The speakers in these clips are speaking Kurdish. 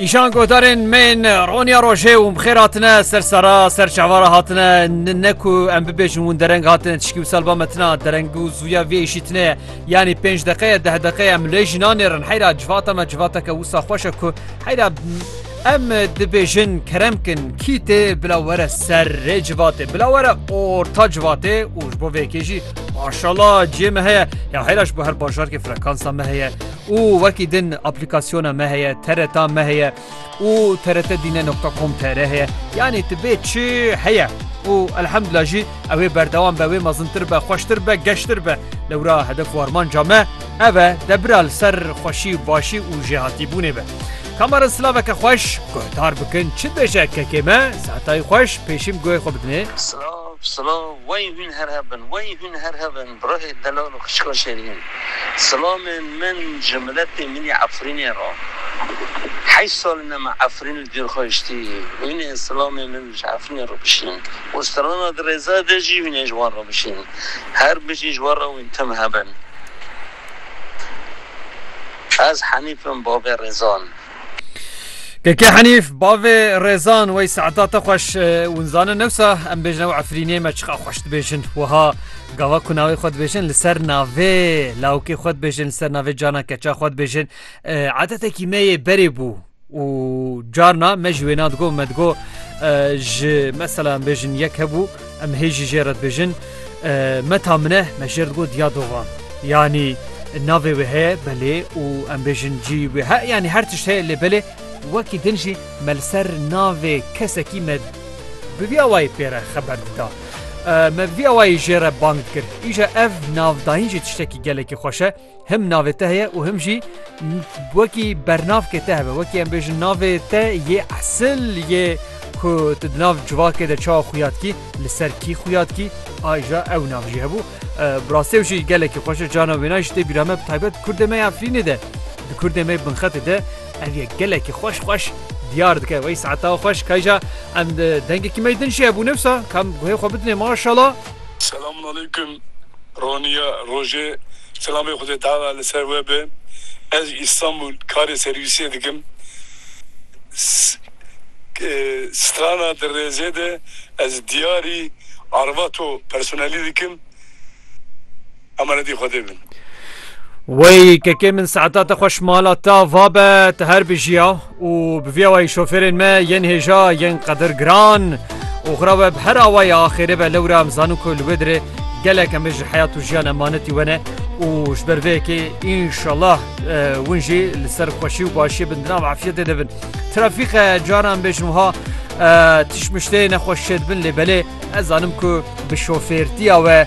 Îşan godarên me yên roniya rojê û bixêr hatine ser sara ser çavara hatine ne ku em bibêjin hûn dereng hatine tişkî û salba metina dereng û zûya vê êşîtine yanî pênc deqeye deh deqeye em lê jî nanêrin heyra civata me civateke wisa xweş e ku heyra em dibêjin kerem kin kî tê bila were ser rê civatê bila were orta civatê û ji bo vê yekê jî maşala ciyê me heye ya heyra ji bo her bajarkê frekansa me heye û wekî din aplîkasyona me heye, TRT me heye û trtdine nokta com tr heye. Yanî tu bê çi heye û elhemdulillah jî ew ê berdewam be, wê mezintir be, xweştir be, geştir be. Lewra hedef û armanca me ev e debira li ser xweşî, başî û jêhatîbûnê be. Ka ma re silaveke xweş guhdar bikin, çi dibêje kekê me? Sehetayî xweş, pêşîm guhê xwe bidinê. Silav, silav, wey hûn her hev bin, wey hûn her hev bin. Birayê delal û xişka şêrîn. Silamên min ji miletê minî Efrînê re. Heşt sal in em Efrîn li dîr xwe hiştî. Wîn ê silamên min ji Efrînê re bişîn û strana Dirêza de jî wîn ê ji wan re bişîn. Her bijî ji we re wîn tim hebin. Ez Henîf im bavê Rêzan. Keke Henîf bavê Rezan wey saeta te xweş winzane newsa em bêjin ew efrîniyê me çiqa xweş dibêjin wiha gava ku navê xwe dibêjin li ser navê lawkê xwe dibêjin li ser navê cana keça xwe dibêjin edetekî me yê berê bû û carna me ji wêna digo me digo ji mesela em bêjin yek hebû Em hê jî jê re dibêjin Meta min e, me jê re digot ya dova. Yanî navê wê heye belê û em bêjin cî wê he yanî her tişt heye lê belê wekî din jî me li ser navê kesekî me bi vî awayî pê re xeber dida. Me bi vî awayî jê re bang dikir. Îja ev navdayîn jî tiştekî gelekî xweş e. Him navê te heye û him jî wekî bernavkê te hebe. Wekî em bêjin navê te yê esil yê ku tu di nav civakê de çawa xuya dikî, li ser kî xuya dikî, aja ew nav jî hebû. Bi rastî ew jî gelekî xweş e. Carna wêna jî tê bîra me bi taybet kurdê me ya Efrînê de, di kurdê me binxetê de ev yek gelekî xweş xweş diyar dike. Wey saeta xweş kayja em dengekî me yê din jî hebû newsa kam guhê xwe bidinê maşala. Selamun aleykum Roniya Rojê selamê Xwedê Teala li ser we be. Ez ji Îstanbul karê serwîsiyê dikim. Strana di rêzê de ez diyarî arvato personelî dikim. Emanetî Xwedê bin. Wey kekê min saeta te xweş mala ta va be te her bijiya û bi vî awayî şofêrên me yên hêja yên qedir giran û xira we bi her awayî axêrê be lewra em zanin ku li wê dirê gelek em ji heyat û jiyan emanetî we ne û ji ber vê yekê înşallah win jî li ser xweşî û başiyê bin di nav afiyetê de bin trafîqe caran bêjin wiha tişmiştê nexweş şêdibin lê belê ez zanim ku bi şofêrtiya we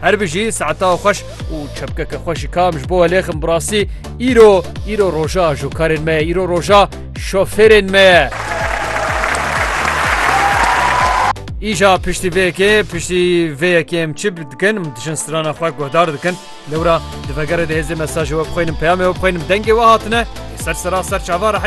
Her bijî saeta xweş û çepkeke xwe ji kam ji bo welêxim birastî îro îro roja ji karên me ye îro roja şofêrên me ye. Îja piştî vê yekê piştî vê yekê em çi dikin em dijin strana xwe guhdar dikin lewra di vegerê de hêzê mesajê we bixwînim peyamê we bixwînim dengê we hatine ser sera ser çava